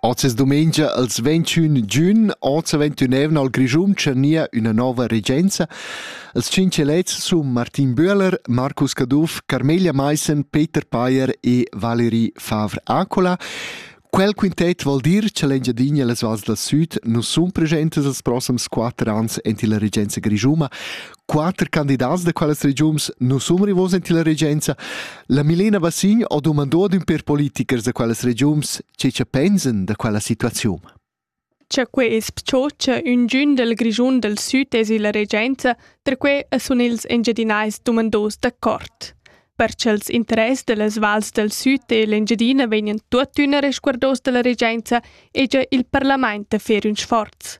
Oz es dumengia ils ventschün giun, oz ventunevna al Grischun tschernia üna nova regenza. Els tschinch elets sun Martin Böhler, Marcus Caduff, Carmelia Maissen, Peter Payer e Valerie Favre-Accola. Quel quintet vuol dir cha l'Engiadina e les vals dal süd nu sun presentes els prossams quatter ans ent illa regenza grischuma. quater candidats da quellas regiuns non sun rivos in la regenza. La Milena Bassin ho dumandò ad ün per politichers da quellas regiuns che che pensen da quella situaziun. Cha quei es pcho cha üngün del Grischun del Süd es illa regenza, perque sun ils engiadinais dumandos d'accord. Per ch'els interess dellas vals del Süd e l'Engiadina vegnan tuottüna resguardos dalla regenza, egia il parlament da fer ün sforz.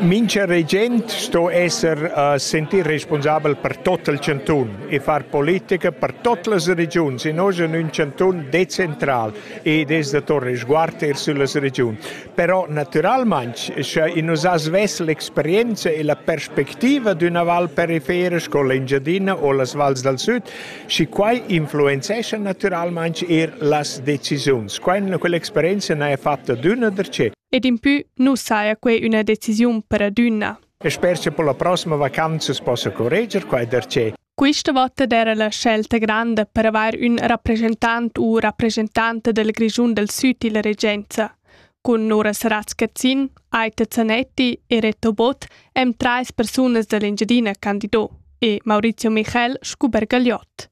Mincha regent sto esser uh, sentir responsabel per tot il chantun e far politica per tot las regiuns e nosch in ün chantun decentral ed es da to resguard eir süllas regiuns. Però natüralmaing, scha in nus ha svess l'experienza e la perspectiva d'üna val perifera sco l'Engiadina o las vals dal süd, schi quai influenzescha natüralmaing eir las decisiuns. Quai quell'experienza n'haja fatta d'üna darcheu. Ed impü nu saja quai üna decisiun per adüna. E sper cha per la prossima vacanza possa correger quai darcheu. Quista vota d'eira la scelta granda per avair ün rappresentant u rappresentanta del Grischun del Süd illa regenza. Cun Nora Saratz-Cazzin, Aita Zanetti e Reto Bott hem trais persunas da l'Engiadina candido e Maurizio Michel scu Bergagliot.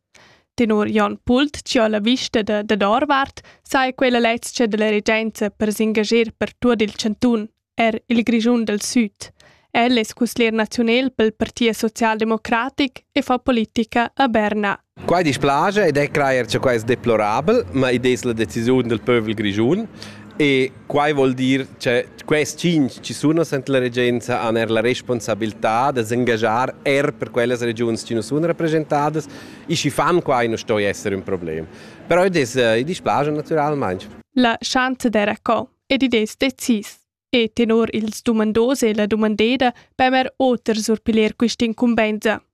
Tenor Jon Pult chi ho la vista da dad ourvart saja quella lezcha da la regenza per s'ingager per tuot il chantun, eir il Grischun dal Süd. El es cusglier naziunel pel Parti socialdemocratic e fa politica a Berna. Quai dispiace ed è crajer cha quai es deplorabel, ma id es la decisiun del pövel grischun e Quai vuol dir che quest tschinch chi sun nus anta la regenza han eir la responsabiltà da s'engaschar eir per quellas regiuns chi nu sun rappresentadas e schi fan quai nu stoi esser ün problem. Però id es i displaja natüralmaing. La chanzlera co ed id es decis. E tenor ils dumandos e la dumandeda per oter surpiler quist'incumbenza.